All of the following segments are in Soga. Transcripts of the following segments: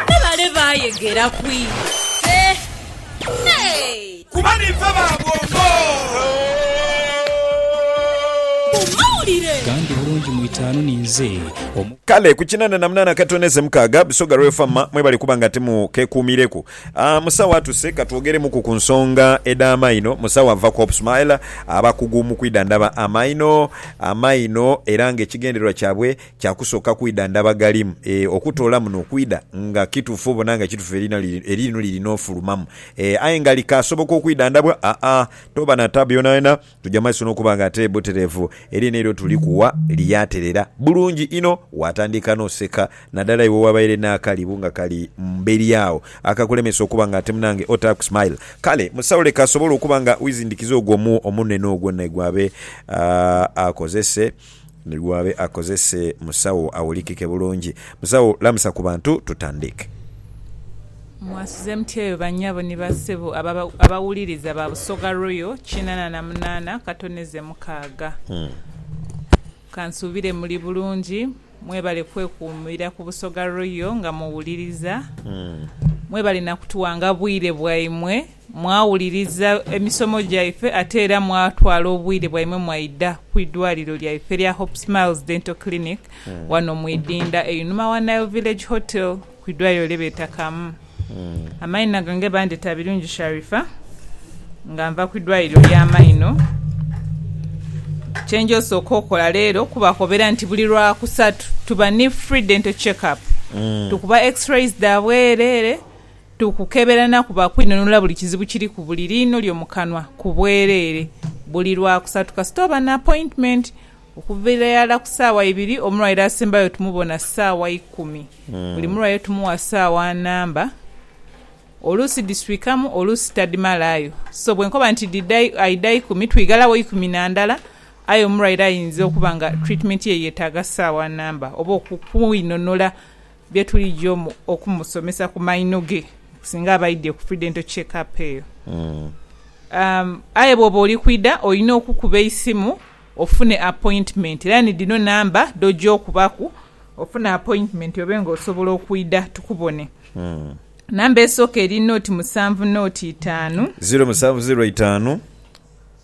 Ni bale baayegera ku ife. Hey! Kuba niife ba bwongo. Mu mawulire. Gandi bulungi mu itaanu ninze omu. Kale ku kinana na munana katono eze mukaaga, Busoga Royal Famma mwebale kuba nga ti mu kekuumireku. Aah musawo atuse katwogeremuku ku nsonga edha maino musawo ava ku Hope Smile abakugu mu kwidhandhaba amaino amaino era nga ekigendererwa kyabwe kya kusooka kwidhandhaba galimu eeh okutola muno okwidha nga kitufu obona nga kitufu eririno liri nofulumamu eeh aye nga likasoboka okwidhandhabwa aah toba na tabu yonayona. Tuja mu maiso n'okuba nga ate butereevu. Elyo n'eira tuli kuwa lyaterera bulungi inho. Waatandika n'oseka, nadala iwe owabaire n'akalibu nga kali mberi agho akakulemesa okuba nga ate munange otaaku smile. Kale musawo leka asobole okuba nga wizindikiza ogwo omunwe n'ogwo naye gwabe akozese. Ni gh'abe akozese musawo awulikike bulungi. Musawo lamusa ku bantu tutandiike. Mwasuze mutya eyo ba nyabo ni ba sebo abawuliriza ba Busoga Royal kinana na munana katoneze mukaaga? Kansuubire muli bulungi. Mwebale kwekuumira ku Busoga Royal nga muwuliriza. Mwebale na kutuwanga bwire bwaimwe. Mwawuliriza emisomo gyaife ate era mwatwala obwire bwaimwe mwaidha ku idwaliro lyaife erya Hope Smiles Dental Clinic wano mu Idinda einhuma wa Nile Village Hotel ku idwaliro lye beeta Kamu. Amaina gange bandheta Birungi Sharifah nga nva ku idwaliro lya maino. Kye nja osooka okola leero kubakobera nti buli lwa kusatu tuba ni free dental check up. Tukuba x-rays dha bwereere. Tukukebera na kuba kwinunula buli kizibu kiri ku buli liino lyo mu kanwa ku bwereere buli Lwakusatu kasita oba n'apointimenti. Okuviira irala ku ssaawa ibiri, omulwaire asembayo tumubona ssaawa ikumi. Buli mulwaire tumuwa ssaawa nnamba, oluusi dhiswikamu oluusi tadhimalaayo. So bwe nkoba nti aidha ikumi, twighalawo ikumi na ndala aye omulwaire ayinza okuba nga twitimeenti ye yeetaaga ssaawa nnamba oba okukwinunula Bye tulijo okumusomesa ku maino ge singa aba aidhye ku pre-dental check up eyo. Aye bw'oba oli kwidha olina okukuba eisimu ofune appointment era ni dhino namba dh'oja okubaku ofune appointment obe nga osobola okwidha tukubone. Namba esooka eri nought musanvu nought itaanu. Ziro musanvu ziro itaanu,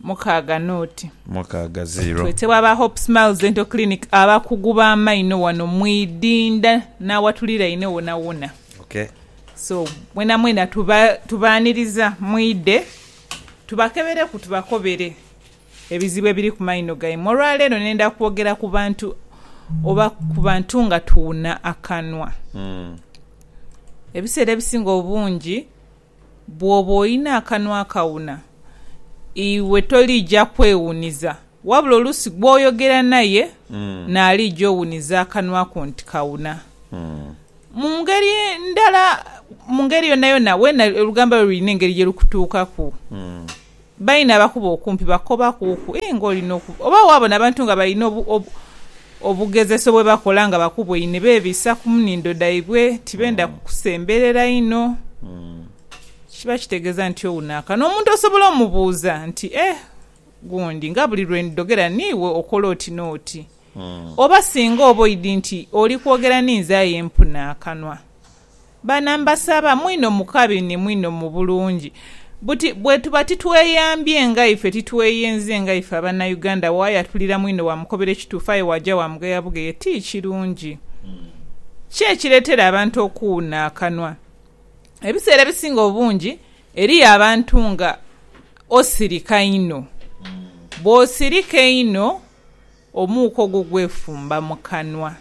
mukaaga n'oti. Mukaaga ziro. Twetebwa aba Hope Smiles Dental Clinic abakugu b'amaino wano mu Idinda n'awatuliraine wonawona. Okay. So, mwenamwena tuba, tubaaniriza mwidhe tubakebereku tubakobere ebizibu ebiri ku maino gaimwe. Olwaleero nenda kwogera ku bantu oba ku bantu nga tuwuna akanwa. Ebiseera ebisinga obungi Bw'oba olina akanwa akawuna, iwe toliija kwewuniza, wabula oluusi gw'oyogera naye n'aliija owuniza akanwa ko nti kawuna. Mu ngeri ndala, mu ngeri yonayona, weena olugamba lwo lulina engeri ye lukutuukaku. Baine abakuba okumpi bakoba kuku ee nga olina okuba oba wabona abantu nga balina obu obu obugezeso bwebakola nga bakubweine bebisa kumunindo daibwe tibenda kukusemberera inho kiba kitegeza nti owuno akana omuntu osobola omubuuza nti eh gundi nga buli lwendidogera niiwe okola oti noti oba singa oba oidi nti oli kwogera ninze aye mpuna akanwa. Baana mbasaba, mwinho mu kabi ni mwinho mu bulungi, buti bwetuba titweyambye nga ife, titweyenze nga ife Abanauganda, waayatulira mwinho waamukobera ekituufu aye waaja waamugeya bugeya, ti kirungi. Ki ekireetera abantu okuwuuna akanwa? Ebiseera ebisinga obungi eriyo abantu nga osirika inho. Bw'osirika einho. Omuuka ogwo gwefumba mu kanwa.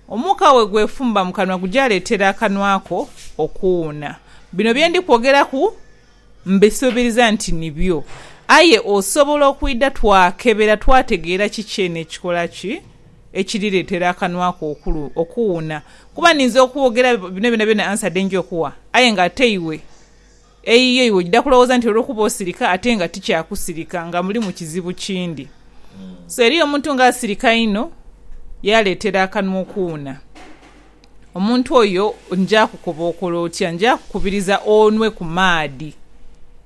Omuuka bwe gwefumba mu kanwa gujaaleetera akanwa ko okuwuuna. Bino bye ndi kwogeraku mbisuubiriza nti nibyo. Aye osobola okwidha twakebera twategeera kiki eno ekikola ki ekirireetera akanwa ko okuwuuna. Kuba ninza okwogera bino byonabyona ansa dhe nja okuwa aye ng'ate iwe. Eyiyo iwe ojja kulowooza nti olwokuba osirika ate nga ti kya kusirika nga mulimu kizibu kindi. So eriyo omuntu nga asirika inho yaaleetera akanwa okuwuna. Omuntu oyo nja kukoba okole otya? Nja kukubiriza onwe ku maadhi.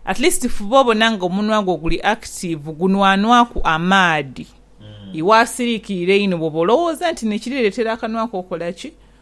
At least fuba obona nga omunwa gwo guli active, gunwanwaku amaadhi. Iwe asiriikirira einho bwoba olowooza nti n'ekirireetera akanwa ko okola ki?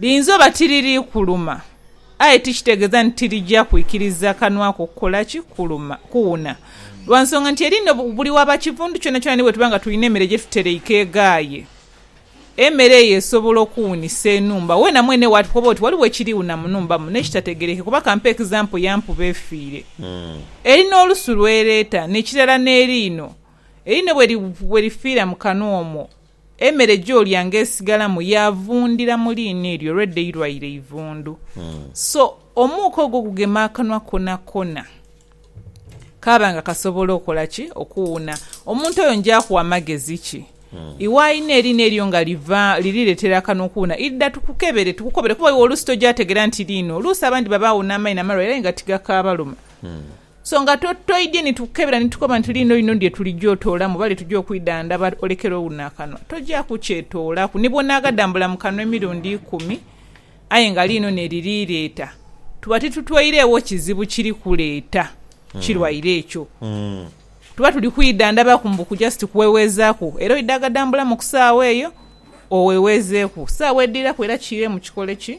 Liyinza oba tiriri kuluma, aye tikitegeeza nti tirija kwikiriza kanwa ko kukola ki? Kuluma, kuwuna. Lwa nsonga nti eri no buli waba kivundu kyonakyona ni bwe tuba nga tulina emere gye tutereike eghaaye. Emere eyo esobola okuwunisa enhumba weena mwene waatu koba oti waliwo ekiriwuna mu nhumba muno ekitategerekeka kuba kampe example ya mpuba efiire. Eri n'olusu lw'ereeta, n'ekirala n'eriino. Eriino bwe lifiira mu kanwa omwo, Emere gyolyanga esigalamu yavundhira mu liina eryo olwedha eirwaire eivundhu. So omuuka ogwo gugema akanwa konakona, kaaba nga kasobola okola ki? Okuwuuna. Omuntu oyo njaakugha amagezi ki? Iwe aina eriina eryo nga liva, liriretera akanwa okuwuuna, idha tukukebere, tukukobere kuba iwe oluusi toja tegera nti liino. Oluusi abandi babaagho n'amaino amalwaire aye nga tigakaabaluma. Songa toidye ni tukukebera ni tukoba nti liino lino lye tulija otoolamu oba lye tuja okwidhandhaba, olekere owuno akanwa. Toja kukyetoolaku. Ni bw'onaaghadambula mu kanwa emirundi ikumi, aye nga liino n'eriri leeta, tuba titutweiregho kizibu kiri kuleeta kirwaire ekyo. Tuba tuli kwidhandhabaku mbu ku just kuweweezaaku. Era oidaaghadambulamu ku saagha eyo, oweweezeeku. Saagha edhiraku era kiiremu kikole ki?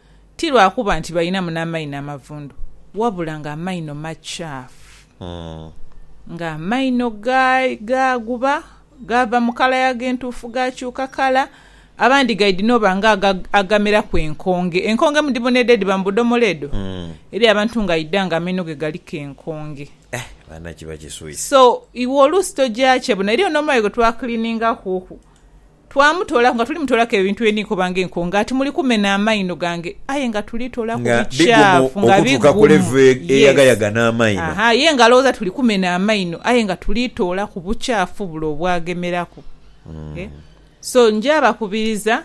Ti lwa kuba nti balinamu n'amaino amavundu, wabula ng'amaino makyafu. Ng'amaino gaaguba gaava mu kala yaago entuufu gaakyuka kala, abandi gaidhi n'oba nga agameraku enkonge. Enkonge mudhibonedha edhiba mu budhomola edho? Eriyo abantu nga aidha nga amaino ge galiku enkonge. So iwe oluusi tojaakye bona. Eriyo n'omuayo gwe twakiliiningakuku Twamutoolaku nga tuli mutoolaku ebintu bye ndi nkoba ng'enko, nga ati muli kumena amaino gange, aye nga tuli toolaku Nga bigumu bikyafu, nga okutuuka ku bigumu. level Yes. eyagayaga n'amaino. Aha, ye nga alowooza tuli kumena amaino, aye nga tuli toolaku bukyafu bule obwagemeraku. Eh, So nja bakubiriza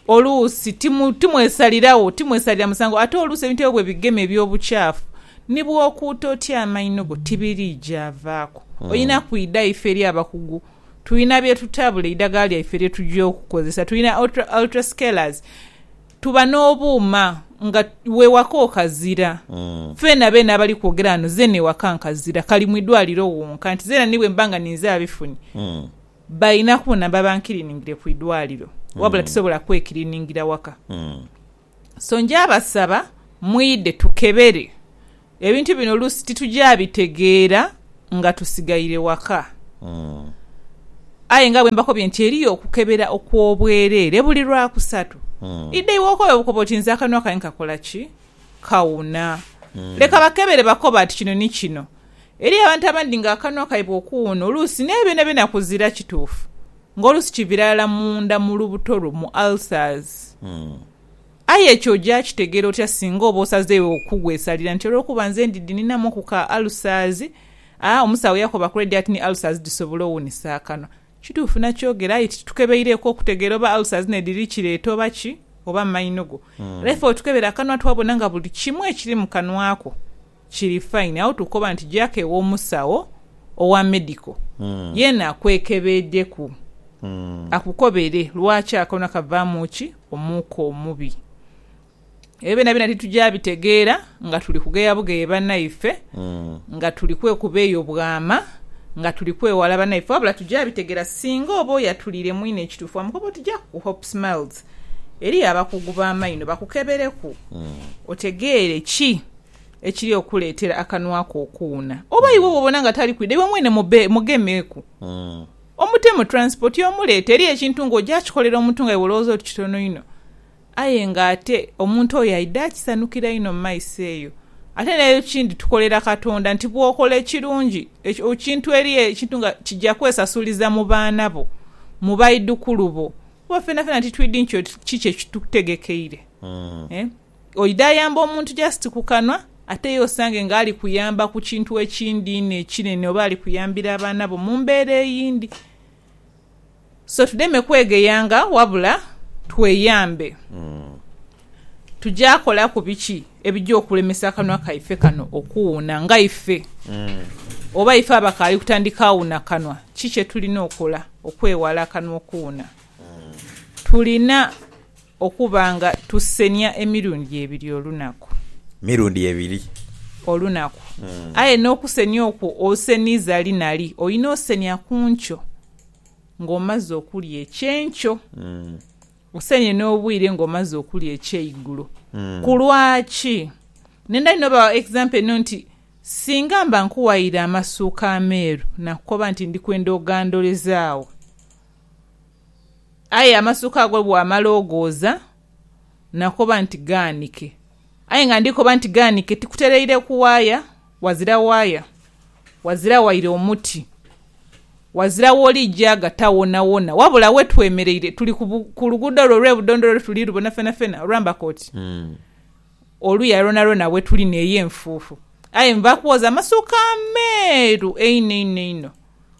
Oluusi timwesalirawo, timwesalira musango. Ate oluusi ebintu ebyo bwe bigema eby'obukyafu, ni bw'okuuta otya amaino go tibiriija avaaku. Olina kwidha ife eri abakugu. Tulina bye tutabula, eidhagala lyaife lye tugya okukozesa. Tulina ultrascalers, tuba n'obuuma nga w'ewaka okazira. Ffeena beene abali kwogera ghano zeena ewaka nkazira, kali mu idwaliro wonka. Nti zeena ni bwe mba nga ninze abifunye. Balina kubona babankiriningire ku idwaliro wabula tisobola kwekiriningira waka. So nja basaba mwidhe tukebere ebintu bino oluusi tituja bitegeera nga tusigaire waka. Aye nga bwe mbakobye nti eriyo okukebera okw'obwereere buli Lwakusatu. Idha iwe okobe bukobi oti nze akanwa kange kakola ki? Kawuna. Leka bakebere bakobe ati kino ni kino. Eriyo abantu abandi nga akanwa kaibwe okuwuuna oluusi naye byonabyona kuzira kituufu nga oluusi kivira ghala munda mu lubuto lwo mu ulcers. Aye ekyo oja kitegera otya singa oba osazeegho okugwesalira nti olwokuba nze ndidhi ninhamuku ka ulcers, a omusawo yakoba kule dhati ni ulcers dhisobola owuunisa akanwa. Kituufu nakyogera aye titukebeireku okutegera oba ulcers nedhiri kireeta oba ki oba maino go. Era ife bwetukebera akanwa twabona nga buli kimu ekiri mu kanwa ko. Kiri fine agho tukoba nti jaku ewomusawo owa medical yena akwekebeedeku akukobere lwaki akono kavamu ki omuuka omubi ebyo byonabyona tituja bitegeera nga tuli kugeya bugeye banaife nga tuli kwekuba eyo bwama nga tuli kwewala banaife wabula tuja bitegera singa oba oyo atuliire mwine ekitufu wamukoba oti jaku ku hope smiles eriyo abakugu bamaino bakukebereku otegeere ki ekiri okukuleetera akanwa ko okuwuuna. Oba iwe bw'obona nga tali kwidha, iwe mwene mube, mugemeeku. Omutemu, transport, omuleete. Eriyo ekintu ng'oja kikolera omuntu nga iwe olowooza oti kitono inho, aye ng'ate omuntu oyo aidha akisanukira inho mu maiso eyo. Ate n'ekindi tukolera Katonda nti bw'okola ekirungi, ekintu, eriyo ekintu nga kija kwesasuliza mu baana bo, mu baidhukulu bo, kuba fenafena titwidhi nti kiki kye kitutegekeire. Oidha ayamba omuntu just ku kanwa ate ye osange nga ali kuyamba ku kintu ekindi inho ekinene oba ali kuyambira abaana bo mu mbeera eyindi. So tudeme kwegeyanga wabula tweyambe. Tugya kolaku biki ebigya okulemesa akanwa kaife kano okuwuuna nga ife? Oba ife abakaali kutandika wuuna kanwa, ki kye tulina okola okwewala akanwa okuwuuna? Tulina. Okuba nga tusenia emirundi ebiri olunaku. Mirundi ebiri. Olunaku. Aye n'okusenia okwo oseniza li na li. Olina osenia ku nkyo ng'omaze okulya ekyenkyo, osenie n'obwire ng'omaze okulya ekyeigulo. Ku lwaki? Ne ndali n'obawa example eno nti, Singa mba nkuwaire amasuuka ameeru, nakukoba nti ndikwenda ogandoleze agho. Aye amasuka ago bwamala ogooza nakoba nti gaanike. Aye nga ndi koba nti gaanike tikutereire ku waaya, wazira waaya, wazira waire omuti, wazira w'oli gyagata wonawona, wabula we twemereire tuli ku luguudo lwo olw'e Budondolo lwe tuli lubona fenafena olwamba koti oluya lwonalwona we tuli n'eyo enfuufu. Aye nva kwooza amasuka ameeru einho einho einho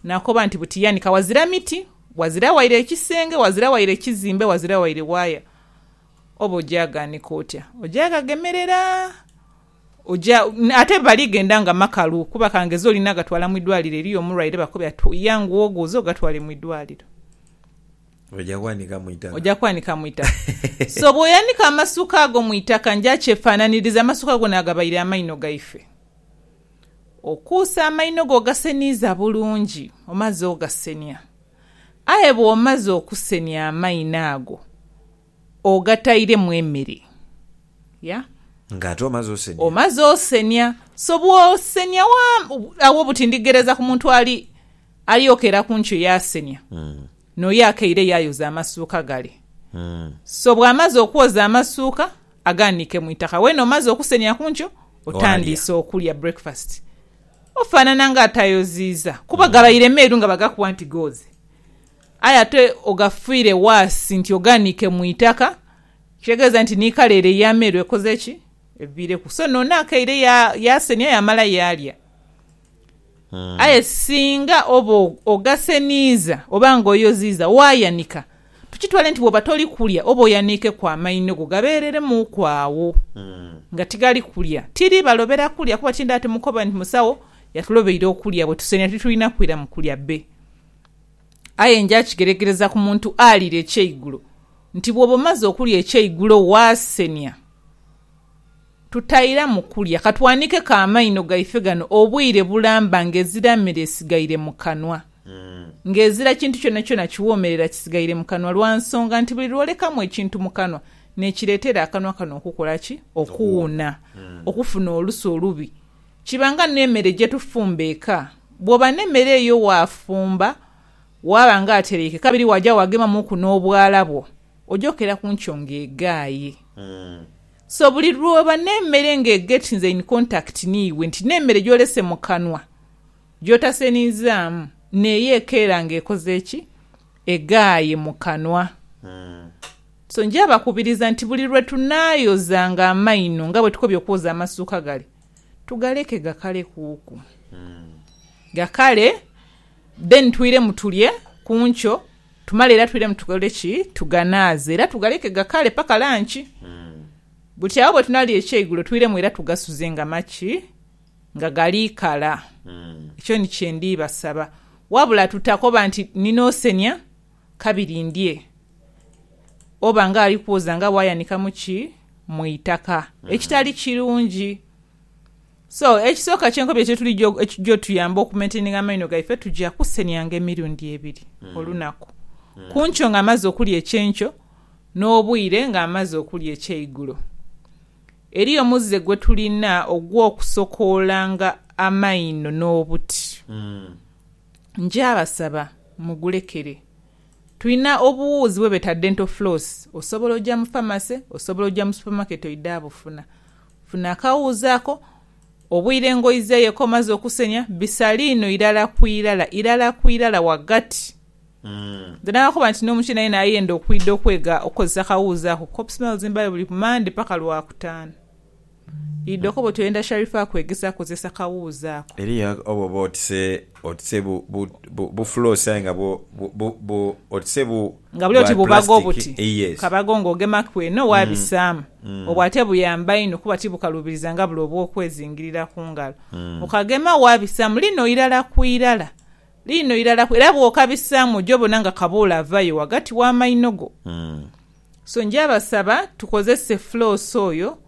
nakoba nti buti yanika wazira miti, Ghazira waire ekisenge, ghazira waire kizimbe, ghazira waire waaya, oba oja ghaanika otya, oja ghagemerera. Oja, ate bali ghenda nga makalu, kuba ka ngeze olina gatwala mu idwaliro eriyo omulwaire bakube ati yanguwa oghuuze ogatwale mu idwaliro. Oja ghanika mu itaka. Oja kwanika mu itaka. So bw'oyanika amasuka ago mu itaka, nja kyefaananiriza amasuka gona agabaire amaino gaife. Okuuse amaino go ogaseniiza bulungi, omaze ogasenia. Aye bw'omaze okusenia amaino ago ogatairemu emere. Ya. Nga ate omaze osenia. Omaze osenia. So bw'osenia wa, agho buti ndigheereza ku muntu ali, ali okeera ku nkyo yaasenia, n'oyo akeire yaayoza amasuuka gale. So bw'amaze okwoza amasuuka, Agaanike mu itaka. Weene omaze okusenhya ku nkyo, otandiise okulya, breakfast, ofaanana ng'atayoziiza. Kuba gabaire meeru nga bagakuwa nti gooze. Aye ate ogafiire waasi nti ogaanike mu itaka, ekitegeeza nti ni kala ere ey'ameeru ekoze ki? Eviireku. So, noono akeire yaasenhya yaamala yaalya. Aye singa oba ogaseniiza oba nga oyoziiza, waayanika, tukitwale nti bw'oba toli kulya oba oyaniikeku amaino go gabeereremuuku agho nga tigali kulya. Tiri balobera kulya kuba tindaha timukoba nti musawo yatulobeire okulya bwe tusenia titulina kwira mu kulya bbe. Aye nja kigeregereza ku muntu alira ekyeigulo nti bw'oba omaze okulya ekyeigulo waasenia. Tutairamu kulya, ka twanhikeko amaino gaife ghano obwire bulamba ng'ezira mere esigaire mu kanwa, ng'ezira kintu kyonakyona kiwoomerera kisigaire mu kanwa, lwa nsonga nti buli lw'olekamu ekintu mu kanwa n'ekireetera akanwa kano okukola ki? Okuwuuna, okufuna olusu olubi. Kiba nga n'emere gye tufumba eka. Bw'oba n'emere eyo waafumba, waaba ng'atereike, kabiri waaja waagemamuuku n'obwala bwo, Oja okeera ku nkyo nga eghaaye. So buli lwooba n'emere nga eget nze in contact n'iwe nti n'emere gy'olese mu kanwa, gy'otasenizaamu, n'eyo ekeera nga ekoze ki? Eghaaye mu kanwa. So nja bakubiriza nti buli lwe tunaayozanga amaino nga bwe tukobye okwoza amasuuka gale, tugaleke gakale kuuku. Gakale, then twiremu tulye ku nkyo. Tumale era twiremu tukole ki? Tuganaaze era tugaleke gakaale paka lanki. Buti agho bwe tunaalya ekyeigulo, twiremu era tugasuze nga maki? Nga gali kala. Ekyo ni kye ndi basaba. Wabula tutakoba nti, Nina osenia, kabiri ndye. Oba nga ali kwoza nga bw'ayanikamu ki? Mu itaka. Ekitali kirungi. So ekisooka kyenkobyo kyetuligya ekigya otuyamba okumaintaininga amaino gaife tugya kusenianga emirundi ebiri olunaku, kunkyo nga amaze okulya ekyenkyo n'obwire nga amaze okulya ekyeigulo. Eriyo omuze gwetulina ogw'okusokoolanga amaino n'obuti. Ngyabasaba mugulekere. Tulina obuwuuzi bwebeta dental floss, osobola ogya mu pharmacy, osobola ogya mu supermarket oidhe abufuna. Funa akawuuzi ako, obwire engoye ze yekomaze okusenya bisaliino irala ku irala, irala ku irala wagati. Then akoba nti n'omukyeni aye nayenda okwidha okwega okukozesa akawuuzi ako kuba opsml zimbayo buli ku Mande paka Lwakutaanu. Idha okobe oti oyenda Sharifah akwegese akozese akawuuzi ako. Eriyo oba oba oti se. Otise bu, bu, bu, bu floss aye nga bwo, bu, bu, bu, otise bu, Nga buli oti bwa bubaga plastic. obuti Eh, yes. kabago ng'ogemaku eno waabisaamu. Obwo ate buyamba inho kuba tibukaluubiriza nga bule obw'okwezingirira ku ngalo. Okagema waabisaamu liino irala ku irala, liino irala ku, era bw'okabisaamu oja obona nga kabuule avayo ghagati w'amaino go. So nja basaba tukozese floss oyo.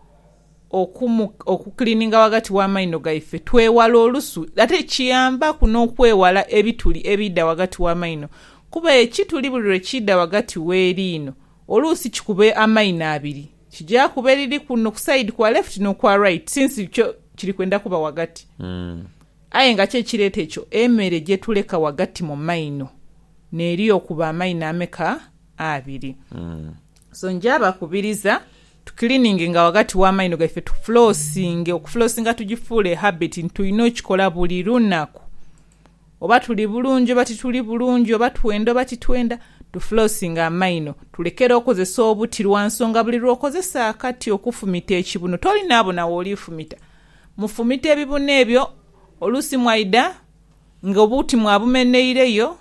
okukiliininga ghagati gh'amaino gaife, twewale olusu. Ate kiyambaku n'okwewala ebituli ebiidha ghagati gh'amaino kuba ekituli buli lwe kiidha ghagati gh'eriino oluusi kikuba amaino abiri, kija kuba eriri kuno ku sayidi kwa lefuti n'okwa raiti since kyo kiri kwenda kuba ghagati. Aye nga ki ekireeta ekyo? Emere gye tuleka ghagati mu maino neeri okuba amaino ameka? Abiri. So nja bakubiriza tu cleaninginga ghagati wa maino gaife tu flossinge, okuflosinga tugifuule habit nti tulina okikola buli lunaku. Oba tuli bulungi oba tituli bulungi, oba twenda oba titwenda, tu flossinge amaino. Tulekere okozesa obuti lwa nsonga buli lw'okozesa akati okufumita ekibuno toli naabona w'oli fumita. Mufumite ebibuno ebyo oluusi mwaidha Nga obuti mwabumenheireyo,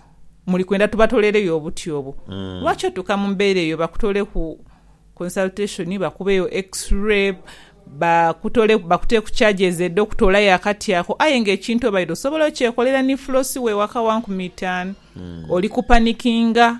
muli kwenda tubatolereyo obuti obwo? Lwaki otuuka mu mbeera eyo bakutoleku consultation, bakubeyo x-ray, bakutoleku, bakuteeku charges edh'okutolayo akati ako aye nga ekintu obaire osobola okyekolera ni floss wo ewaka wa nkumi itaanu? Oli kupanikinga.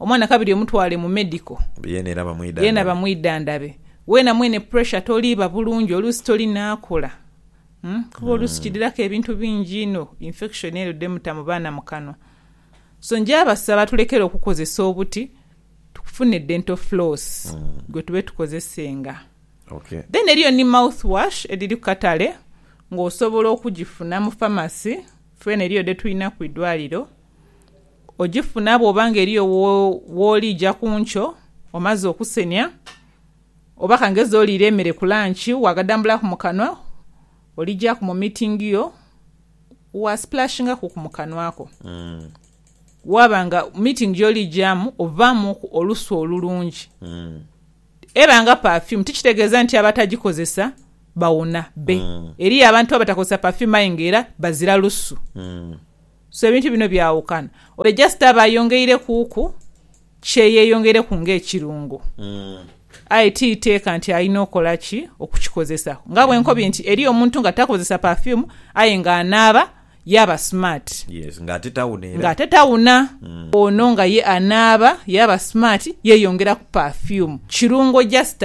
Omwana kabiri omutwale mu medical yeena bamwidhandhabe. Weena mwene pressure toliiba bulungi oluusi toli naakula kuba oluusi kidhiraku ebintu bingi inho infection ere dhemuta mu baana mu kanwa. So nja basaba tulekere okukozesa obuti tufune dental floss gwe tube tukozesenga. Then eriyo ni mouth wash edhiri ku katale ng'osobola okugifuna mu pharmacy. Feena eriyo dhe tulinaku idwaliro. Ogifuna bw'oba nga eriyo w'oli ja ku nkyo omaze okusenia, oba ka ngeze oliire emere ku lanci waagadambulaku mu kanwa, oligyaku mu miitingi yo waasipulashingaku ku mu kanwa ko. Waaba nga miitingi gy'oli gyamu ovaamuku olusu olulungi, eba nga pafiyumu. Tikitegeeza nti abatagikozesa bawona bbe. Eriyo abantu abatakozesa pafiyumu aye ng'era bazira lusu. So ebintu bino byawukana. Ole just aba ayongeire kuuku kye yeyongeire ku nga ekirungo. Aye ti iteeka nti alina okola ki okukikozesa. Nga bwe nkobye nti eriyo omuntu nga takozesa perfume aye nga anaaba yaaba smart. Yes nga ate tawuna era. Nga ate tawuna. Ono nga ye anaaba yaaba smart yeyongeraku perfume. Kirungo just.